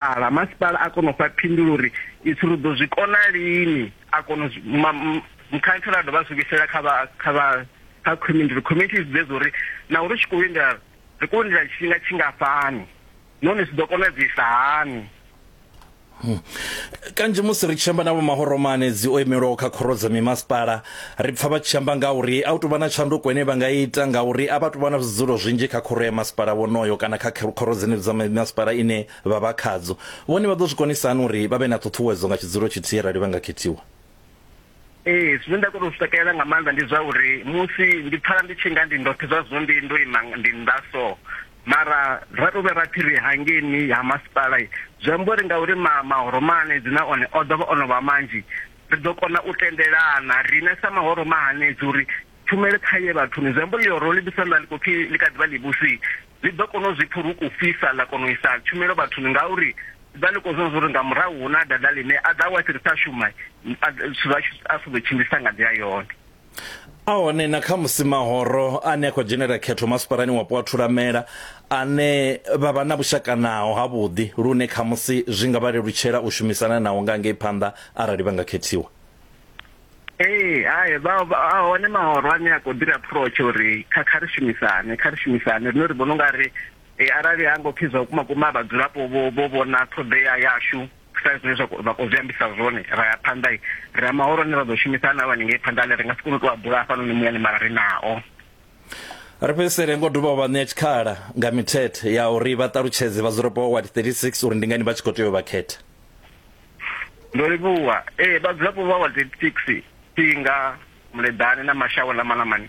Ala masipala a kona u fha phindulo uri itshi ri ḓo zwi kona lini a kona mukhantsela a dovha a zwi vhuisela kha vha kha vha kha community uri community i zwiḓe uri na uri tshi khou lindela ri khou lindela tshifhinga tshingafhani nahone zwi ḓo konadzisa hani kanzhi musi ri tshi amba na vho mahoromane dzi o imelwaho kha khoro dza mimasipala Ri pfa vha tshi amba nga uri a u tou vha na tshanduko ine vha nga ita ngauri a vha tou vha na zwidzulo zwinzhi kha khoro ya masipala wonoyo kana kha khoro dzenedzo dza masipala ine vha vha khadzo. Vhone vha ḓo zwi konisa hani uri vha vhe na ṱhuṱhuwedzo nga tshidzulo tshithihi arali vha nga khethiwa? Ee, zwine nda kona u zwi takalela nga maanḓa ndi zwa uri musi ndi pfala ndi tshi nga ndi ndoṱhe zwa zwino ndi ndo ima ndi nnḓa so mara ra tou vhuya ra pfhi ri hangeni ha masipala zwi amba uri ngauri ma mahoro maanedzi na one o ḓo vha o no vha manzhi ri ḓo kona u tendelana riṋe sa mahoro mahanedzi uri tshumele kha ye vhathuni zwi amba uri ḽihoro ḽi vhisa ḽa ḽi khou pfhi ḽi kha ḓivha ḽivhusi ḽi ḓo kona u zwi pfha uri u fhisa ḽa kona u isa tshumelo vhathuni ngauri ḓa ḽi khou zwona zwa uri nga murahu hu na dada ḽine a ḓa wa tshi ri sa shuma a zwa a si ḓo tshimbilisa nga nḓila yone a hone na kha musi mahoro ane a khou dzhenela khetho masipalani wapo wa thulamela ane vha vha na vhushaka naho ha vhuḓi lune kha musi zwi nga vha lelutshela u shumisana naho nga ngei phanḓa arali vha nga khethiwa Ee, hai vha a hone mahoro ane a khou ḓiri approach uri kha kha ri shumisane, kha ri shumisane rine ri vhona ungari eh, arali ha ngo pfhi zwa vhukuma kuma vhadzulapo vho vho vhona ṱhoḓea yashu sa zwine zwa vha khou zwi ambisa zwone ra ya phanḓa ri a mahoro ane ra ḓo shumisa ane a vha ni ngei phanḓa ane ri nga si kone u tou a bula hafhanoni muyani mara ri nao ri fhedzisele ngo dovha vha ṋea tshikhala nga mithethe ya uri vha ṱalutshedze vhadzulapo vha ward 36 uri ndi ngani vha tshi khou tea u vha khetha ndo livhuwa ee vhadzulapo vha ward 36 thinga muleḓane na mashawe ḽa malamani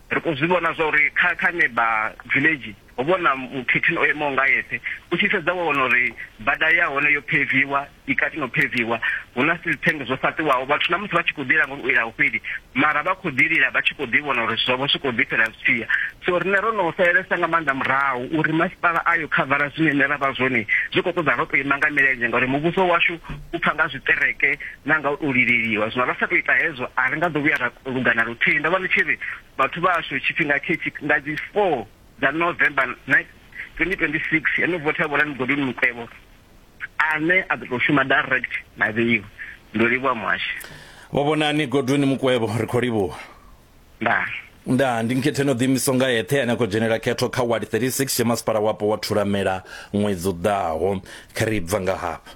Ri khou zwi vhona zwa uri kha kha Neba Village ho vha hu na mukhethini o emaho nga eṱhe. U tshi sedza wa wana uri bada ya hone yo pheviwa, i kati na u pheviwa. Hu na steel tank zwo fhaṱiwaho. Vhathu na musi vha tshi khou ḓi langa uri u lila a hu fheli mara vha khou ḓi lila vha tshi khou ḓi vhona uri zwithu zwavho zwi khou ḓi fhela zwi tshi ya. So riṋe ro no salelesa nga maanḓa murahu uri masipala a yo khavara zwine riṋe ra vha zwone. Zwi khou ṱoḓa ro tou ima nga milenzhe ngauri muvhuso washu u pfa nga zwiṱereke. na nga u tou livheliwa. Zwino ra sa tou ita hezwo, a ri nga ḓo vhuya ra luga na luthihi. Ndo vha ndi tshi ri vhathu vha hashu tshifhinga tshetsho nga dzi 4 dza November 2026, he no votha Vhulani Godwin Mukwevho ane a ḓo tou shuma direct na vheiwa. Ndo livhuwa muhashi. Vho Vhonani Godwin Mukwevho, ri khou livhuwa. Ndaa. Ndaa, ndi nkhetheni o ḓiimisaho nga eṱhe ane a khou dzhenela khetho kha ward 36 tshe masipala wapo wa Thulamela ṅwedzi u ḓaho. Kha ri bva nga hafha.